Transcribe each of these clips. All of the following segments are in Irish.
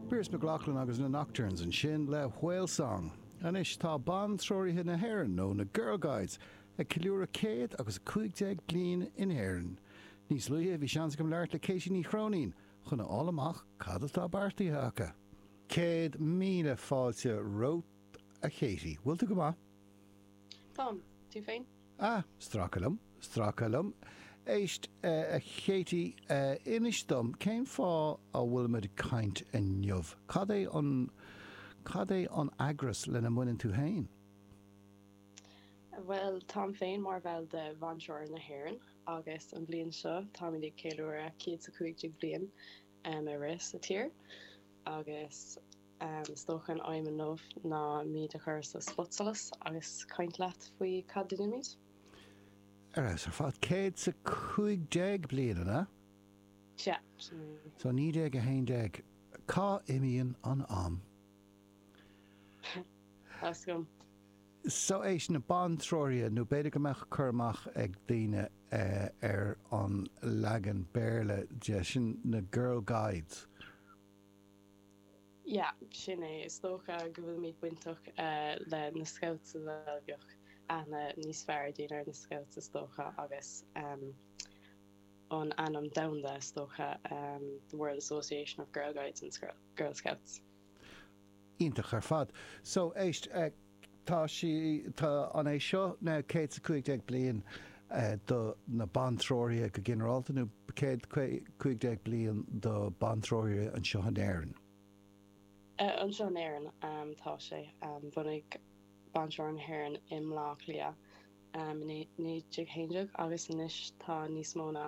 Pearse McGloughlin agus na Nocturnes ansin le Whale Song. Anois tá Bantreoraithe na hÉireann, nó na Girl Guides, ag ceiliúradh céad agus a cúig déag bliain in Éirinn. Níos luaithe bhí seans agam labhairt le Katie Ní Chróinín chun a fháil amach cad atá beartaithe acu. Céad míle fáilte romhat, a Katie. Bhfuil tú go maith? Táim. Tú féin? Á, stracadh liom, stracadh liom. Éist, a Katie, inis dom, cén fáth a bhfuilimid ag caint inniu? Cad é an, cad é an eagras lena mbaineann tú féin? Bhuel, táim féin mar bhall de Bhantreoraithe na hÉireann agus an bhliain seo táimid ag ceiliúradh 115 bliain ag rith sa tír agus, Is dócha an aidhm inniu ná muid a chur sa spotsolas agus caint leat faoi cad a dhéanaimid. Ar fheabhas ar fad. Céad 's a cúig déag bliain, an ea? Sea, sin é. So, 1911. Cá n-imíonn an am? Tá 's agam. So, éist, na Bantreoraithe, nó b'fhéidir go mbeadh cur amach ag daoine ar an leagan Béarla de, sin na Girl Guides. Yeah, sin é. Is dócha go bhfuilimid bainteach le na scouts a bheadh aithne níos fearr ag daoine ar na scouts is dócha agus an ainm domhanda is dócha the World Association of Girl Guides and Girl Scouts. Iontach ar fad. So, éist. Tá sí, tá an é seo na céad 's a cúig déag bliain do na Bantreoraithe go ginearálta nó céad cúig déag bliain do Bantreoraithe anseo in Éirinn? Anseo in Éirinn, tá sé. Bhunaigh Bantreoraithe na hÉireann i mBleá Cliath i naoi déag haon déag agus anois tá níos mó ná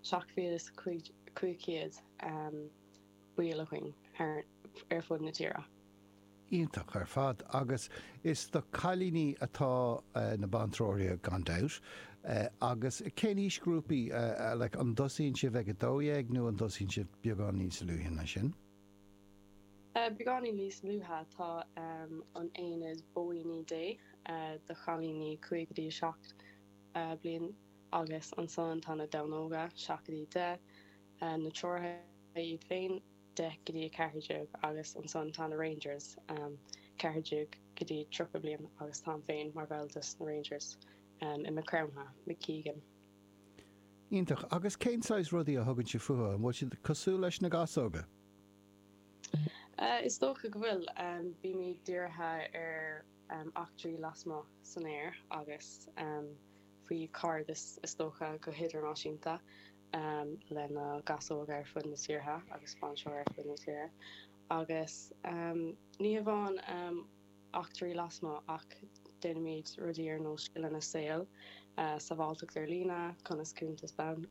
seacht mhíle 's cúig chéad. ball againn ar fud na tíre. Iontach ar fad. Agus is do cailíní atá na bantreoraithe gan dabht. Agus cén aoisghrúpaí, like an dtosaíonn sibh ag a dó dhéag nó an dtosaíonn sibh beagán níos luaithe ná sin? Beagáinín níos luaithe, tá an Aonad Bóíní Dé do chailíní cúig go dtí a seacht bliain agus ansan tá na Donnóga, seacht go dtí deich. na treoraithe iad féin, 10 go dtí 14, agus ansan tá na Rangers, 14 go dtí 30 bliain, agus táim féin mar bhall de sna Rangers, i Maigh Chromtha, McEgan. Iontach. Agus cén saghas rudaí a thugann sibh fúthu? An bhfuil siad cosúil leis na gasóga? Is dócha go bhfuil. Bímid dírithe ar eachtraí lasmuigh san aer agus faoi chairdeas, is dócha, go hidirnáisiúnta. lena gcasóg ar fud na tíortha agus fiú anseo ar fud na tíre, agus ní hamháin eachtraí lasmuigh ach déanaimid rudaí ar nós scileanna saoil, sábháilteacht ar líne, conas cuntas banc.